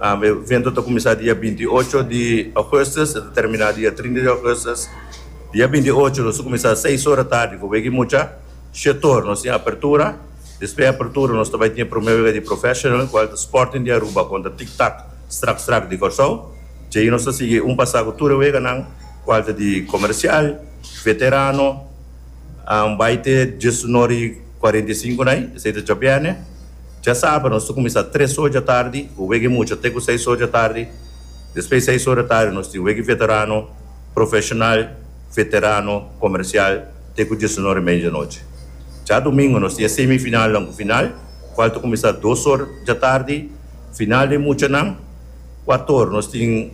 E evento ta kuminsá dia binti i ocho di Ougùstus, e ta terminá dia trinta di Ougùstus. Dia binti i ocho nos ta kuminsá seis ora tardi ku wega i mucha shetor. Nos tin apertura, despues apertura nos ta bai tin e promé wega di Professional kual ta Sporting di Aruba kontra Tik Tak Strak Strak di Kòrsou. Dja'i nos ta sigui un pasá ku tur e weganan kual ta di Komersial, Veterano, bai te djesunor i kuarenta i sinku na ai, esei ta djabièrnè. Djasabra nos ta kuminsá tres ora dja tardi ku wega e mucha te ku seis ora dja tardi. Despues di seis ora dja tardi nos tin wega veterano, profeshonal, veterano, komersial te ku diesunor i media di anochi. Dja dumingu nos tin e semifinalnan ku final kual ta kuminsá dos ora dja tardi. Final di e muchanan kuatu ora nos tin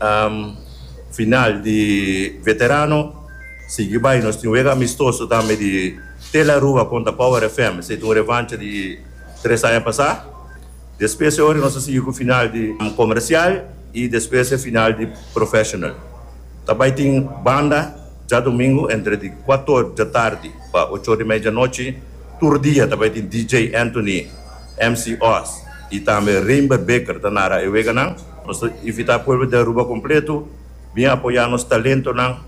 final di veterano. Sigui bai nos tin wega amistoso tambe di Tel Aruba kontra Power FM. Esei ta un revancha di. Tres aña pasá, despues e ora nos a sigui ku final di komersial i despues e final di professional. Ta bai tin banda djadumingu entre di kuatu or dja tardi pa ocho or i media dja nochi. Tur dia ta bai tin DJ Anthony, MC Oz i tambe Reinber Beker ta nara e weganan. Nos ta invitá pueblo di Aruba kompletu. Bin apoyá nos talentonan,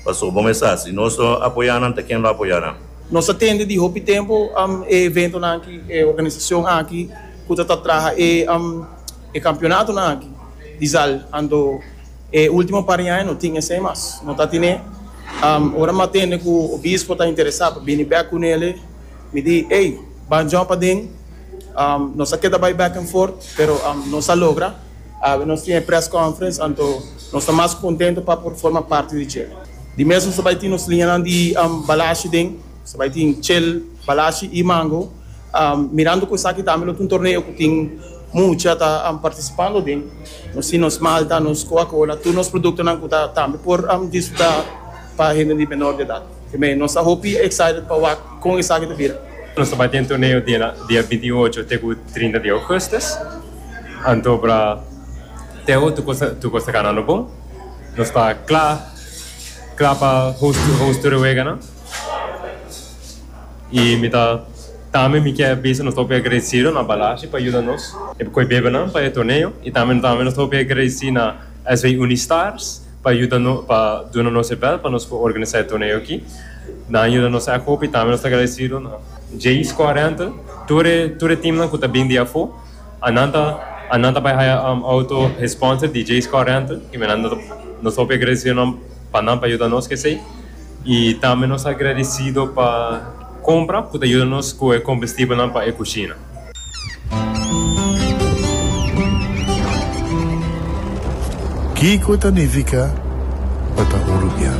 pasobra bon esas, si nos no apoyá nan, ta ken lo apoyá nan? Nos a tende di hopi tempu e eventonan aki, e organisacion aki cu ta ta traha e campeonatonan aki di zal, anto e ultimo par di aña no tin esey mas, no ta tine. Ora mi a tende cu obispo ta interesa pa bini bek cu nele, mi di, ey, ban djòp aden, nos a keda bay back and forth, pero nos a logra. Nos tin e press conference anto nos ta mas contento pa por forma parti di dje. Di mes nos ta bai tin nos liñanan di balashi den, nos ta bai tin chel, balashi y mango. Mirando cu esaki tambe lo ta un torneo cu tin mucha ta participando den. Nos tin nos malta, nos coca cola, tur nos productonan cu ta tambe por disfruta pa hende di menor di edad. P'e nos ta hopi excited pa wak con esaki ta bira. Nos ta bai tin e torneo di dia binti y ocho te cu trinta di augustus. Anto para Teo tu cosa tu cosa ta ganando bon nos ta cla cla pa host host tur e wega nan y mi ta tambe mi kier bisa nos ta hopi agradecido na Balashi pa yuda nos e coe bebenan pa e torneo y tambe nos tambe nos ta hopi agradeci na SV Unistars pa yuda nos pa duna nos e bel pa nos por organisa e torneo aki nan a yuda nos akoko y tambe nos ta agradecido na JSCORENT tur e tur e team nan cu ta bini di afo. Anan ta anan ta bai haya um auto he sponsor di Jay's Car Rental y me nan ta nos hopi agradecido nan pa nan pa yuda nos cu esey y tambe nos ta agradecido pa compra cu ta yuda nos cu e combustible nan pa e cushina. Kico ta nifica pa ta un rubian?